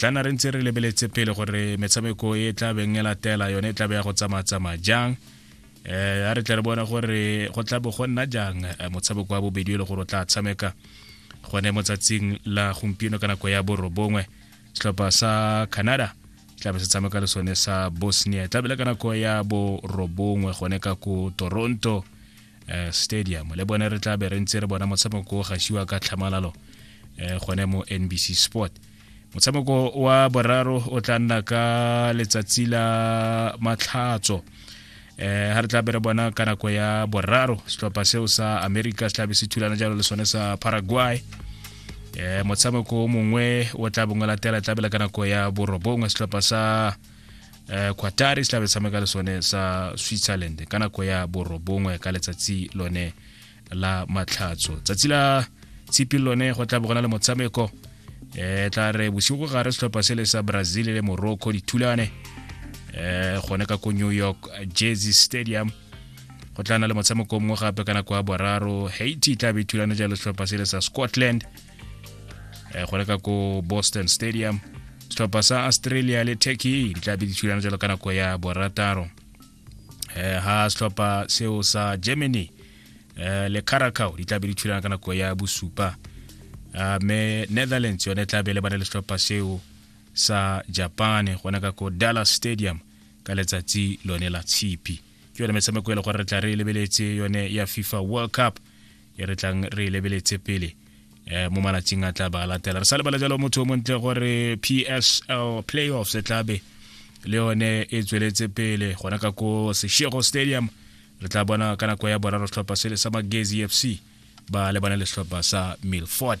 tlana re ntse re lebeletse pele gore metshameko e tla beng e latela yone e tla be ya go tsamaya-tsamaya jang eh a re tle re bona gore go tla bo go nna jang eh, motshameko wa bobedi e le gore o tla tshameka gone mo tsatsing la gompieno ka nako ya borobongwe setlhopha sa canada tlabe se tshameka le sone sa bosnia tlabe le ka nako ya borobongwe gone ka ko toronto eh, stadium le bone re tlabe re ntse re bona motshameko o gashiwa ka tlhamalalo eh, gone mo nbc sport motshameko wa boraro o tla nna ka letsatsi la matlhatso eh ha re tla bere bona ka nako ya boraro setlhopha seo sa america se tlabe se thulana jalo le sone sa paraguay eh motshameko o mongwe o tla bongwe latela tlabela ka nako ya borobongwe setlhopha sa eh quatari se tlabe tshameka le sone sa switzerland ka nako ya borobongwe ka letsatsi lone la matlhatso tsatsi la tshipi lone go tla bogona le motshameko e tla re bosigo gare setlhopha se le sa brazil le morocco dithulane um gone ka ko new york jersey stadium go tla na le motshameko mongwe gape ka nako ya boraro haiti tla be thulane jalo setlhopha se le sa scotland um gone ka ko boston stadium setlhopha sa australia le turkey di tla be dithulane jalo ka nako ya borataro eh ha setlhopha seo sa germany eh le caracao di tlabe di thulana ka nako ya bosupa ah, me netherlands yone tlabe le bana le setlhopha seo sa japan gona ka ko dallas stadium ka letsatsi lone la tshipi ke yone metshameko e le gore re tla re lebeletse yone ya fifa world cup e re tlang re e lebeletse pele um mo malatsing a tla ba a latela re sa lebala jalo motho o montle gore psl playoffs e tlabe le yone e tsweletse pele gona ka ko seshego stadium re tla bona ka nako ya boraro setlhopha sele sa magezi f c ba lebane le setlhopha sa milford